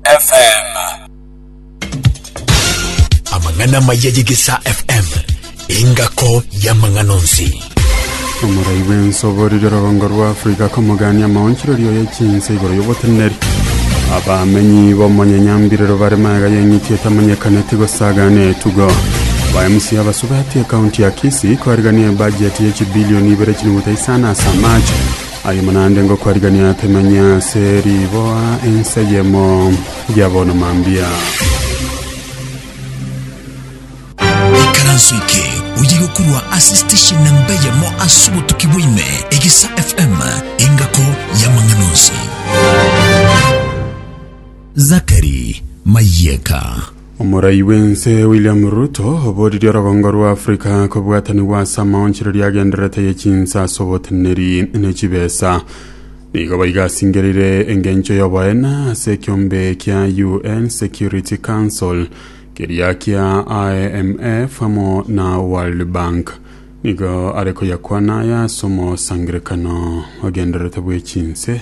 FM. Amang'ana amaya y'Egesa FM, engako y'amang'ana onsi. omorai bw'ensobo riria rogongo rwa afrika komogania amaonchererio ya chinse igoro y'oboteneneri abamenyi b'omonyanyambirero bare maega y'eng'iti etamanyekaneti gosagana etugo ba mc abasubati ekaunti ya kisi koarigania ebajeti ya chibilioni ibere chinuguta isano ase amache Ayio naende ngokwarigereria temenye ase riboa enseyemo ya bono mambia. Ekaranso eke oyige korwa ase station namba eyemo ase obotuki bwa ime, Egesa FM, engako y'amang'ana onsi. Zachary Mayeka. Omorai bw'ense William Ruto oboririe orogongo rwa Africa kobwatanigwa ase amaonchereria agendererete ye chinsa ase oboteneri ne chibesa. Nigo baigasingerire engencho y'oboene ase ekiombe kia UN Security Council keria kia IMF amo na World Bank. Nigo are koyakwana aya ase omosangerekano ogendererete bw'echinse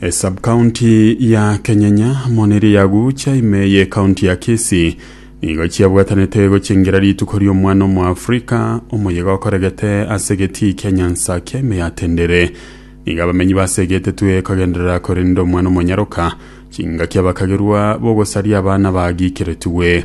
Esubkaunti ya Kenyenya moniri yagucha ime ye kaunti ya Kisii nigo chiabwatanete gochengira rituko ri'omwana omoafrika omoyega okoregete ase egetii kia Nyansakia ime ya Tendere. Nigo abamenyi base egetetwe kogenderera korenda omwana omonyaroka chingaki abakagerwa bogosaria abana bagiikeretigwe.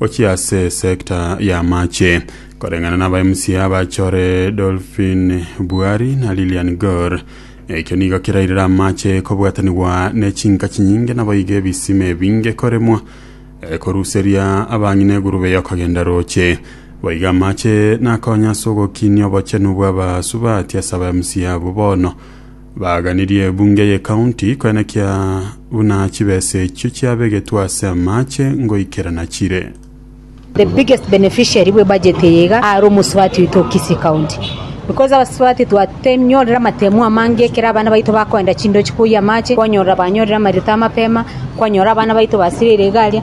Gochia ase sector ya amache koreng'ana na aba MCA abachore Dolphin Bwari na Lilian Gor. Ekio nigo kerairire amache kobwatanigwa ne chinka chinyinge naboigo ebisima ebinge koremwa eh, koruseria abang'ina egurube y'okogenda roche. Boigo amache nakonya ase ogokinia obochenu bw'abasubati ase aba MCA abwo bono Baaganirie ebunge y'ecounty koenekia buna chibesa echio chiabegetwe ase amache ngoikerana chire. The biggest beneficiary bwe budget eye iga are omosubati oito o Kisii County because abasubati twatenyorire amatemo amange ekero abana baito bakoenda chindochi koyia amache, kwanyorera banyorire amarioto amapema, kwanyora abana baito basirire iga aria.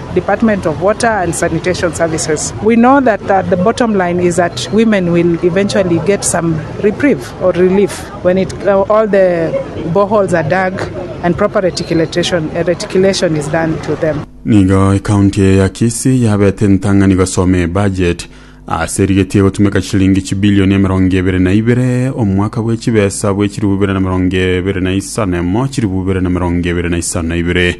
Department of Water and Sanitation Services. We know that uh, the bottom line is that women will eventually get some reprieve or relief when it, uh, all the boreholes are dug and proper reticulation, uh, reticulation is done to them. nigo ekaunti eye ya kisii yabete entang'ani gosoma ebudget ase erigetie gotumeka chilingi chibilioni emerongo ebere na ibere omwaka bwe chibesa bwe chiribu bibere na merongo ebere na isano emo chiribu bibere na merongo ebere na isano na ibere